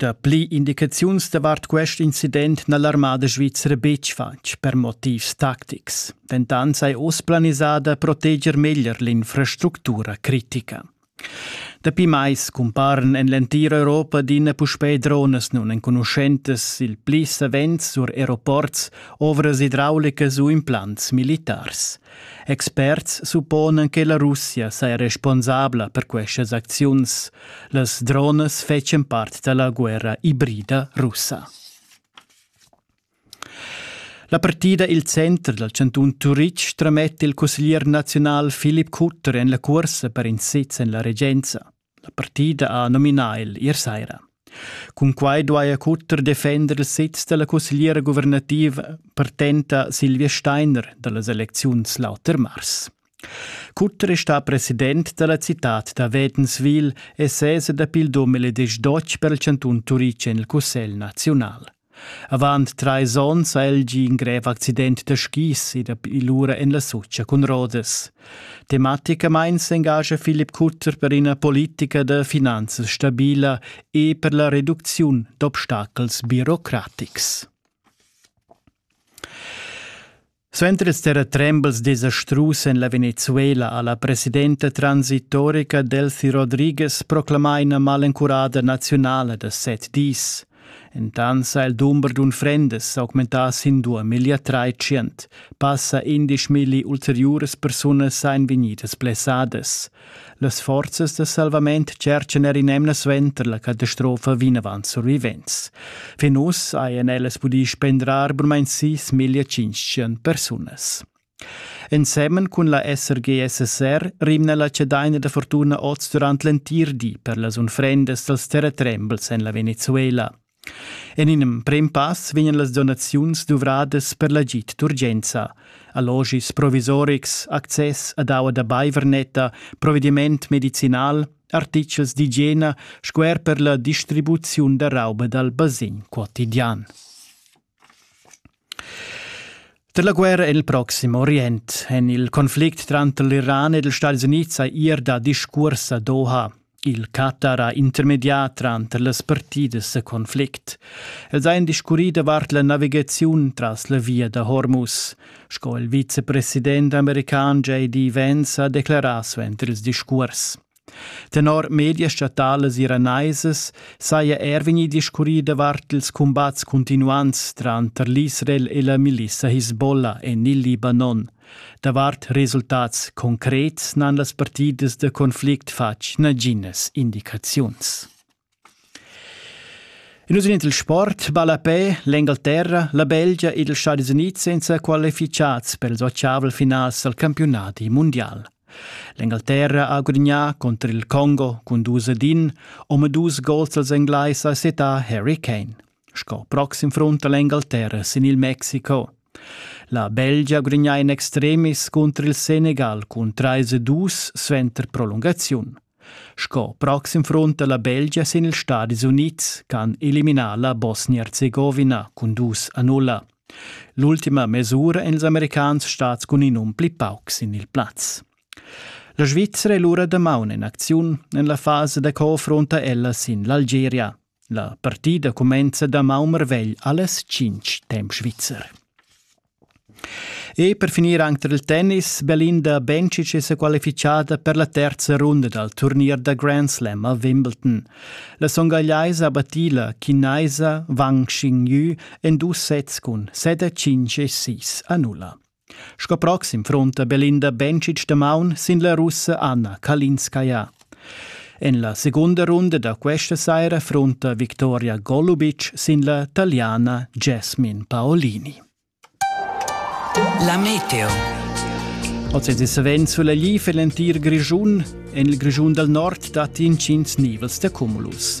Dapli indicaziuns davart quest incident n'ha l'armada svizra betg fatg per motivs tactics. Dentant sei oz planisada proteger meglier l'infrastructura critica. Dapi mais cumparan en l'entira Europa adina puspè dronas nunenconuschentas, il pli savens sur aeroports, ovras idraulicas u implants militars. Experts supponan che la Russia saja responsabla per questas acziuns. Las dronas fetschan part da la guerra ibrida russa. La partida il center dal chantun Turitg trametta il cusseglier naziunal Filip Kutter en la cursa per in sez en la regenza. La partida ha nominà el ier saira. Cun quai duaja Cutter defender il sez da la cussegliera guvernativa partenta Silvia Steiner da las elecziuns l'auter mars. Cutter è stà president da la citad da Wedenswil e sesa dapi il domele desch dotg per il chantun Turic en il Cussegl naziunal. Avant trais onns ha el gì in grev accident da skis ed è lura en la Sotscha cun rodas. Tematicamain s'engascha Philipp Kutter per ina politica da finanzas stabila e per la reducziun d'obstacels birocratics. Suenter ils terratrembels desastrus en la Venezuela ha la presidenta transitorica Delfi Rodriguez proclamà ina malencurada naziunala da set dis. Entant ha il dumber d'unfrendas augmentà sin dua miglia tschient. Passa indesch milli ulteriuras persunas ein vegnidas blessadas. Las forzas da salvament tscherchan er in'emna suenter la catastrofa vinavant survivents. Fin uss hajan ellas pudì spendrar burmain sis miglia tschintg persunas. Ensemen cun la SRGSSR rimna la cedaina da fortuna oz durant l'entir di per las unfrendas dals terratrembels en la Venezuela. En in emprem pass vegnan las donaziuns duvradas per l'agid d'urgenza, allogis provisorics, access ad aua da baivernetta, provediment medicinal, artitgels d'igiena sco er per la distribuziun da rauba dal basegn quotidian. Da la guerra en il Proxim Orient en il conflict tranter l'Iran ed ils Stati Unids ha ir da discurs a Doha. Il Qatar ha intermedià tranter las partidas da conflict. Els han discurrì davart la navigaziun tras la via da Hormuz. Sco il vicepresident american JD Vance ha declarà suenter ils discurs. Tenor medias statalas iranaisas saja er vegnì discurrì davart ils cumbats cuntinuants tranter l'Israel e la milissa Hisbollah en il Libanon. Davart resultats concrets n'han las partidas da conflict fatg naginas indicaziuns. Nus in il sport balla pe l'Engalterra, la Belgia ed ils Stadis Unids senza qualifichats per ils ottavel finals al campionati mundial. L'Engalterra ha gudignà contro il Congo cun dus ed in, om dus gols als Englais a setà Harry Kane. Sco proxim front l'Engalterra sin il Mexico. La Belgia gudignà in extremis contro il Senegal cun 3 e 2 suenter prolungaziun. Sco proxim front da la Belgia sin ils Stadis Unids ch'han eliminà la Bosnia-Erzegovina cun dus a nulla. L'ultima mesura èn ils americans stads cun in um pli pauc sin il plaz. La Svizzera è lura damaun en acziun en la fasa da co affronta ella sin l'Algeria. La partida cumenza damaun marvegl allas tschintg temp svizzer. E per finir anche il tennis, Belinda Bencic è sequalificata per la terza runda dal turnier da Grand Slam a Wimbledon. La songagliaisa battì la chinaisa Wang Xinyu en dus sets cun 7-5 e 6 a 0. Sco proxim frunta Belinda Bencic da maun sin la Russa Anna Kalinskaya. En la segunda runda da questa saira frunta Victoria Golubic sin la taliana Jasmine Paolini. La meteo. Oz è savens sulla gli l'entir Grischun. En il Grischun dal nord datti intgins nivels da cumulus.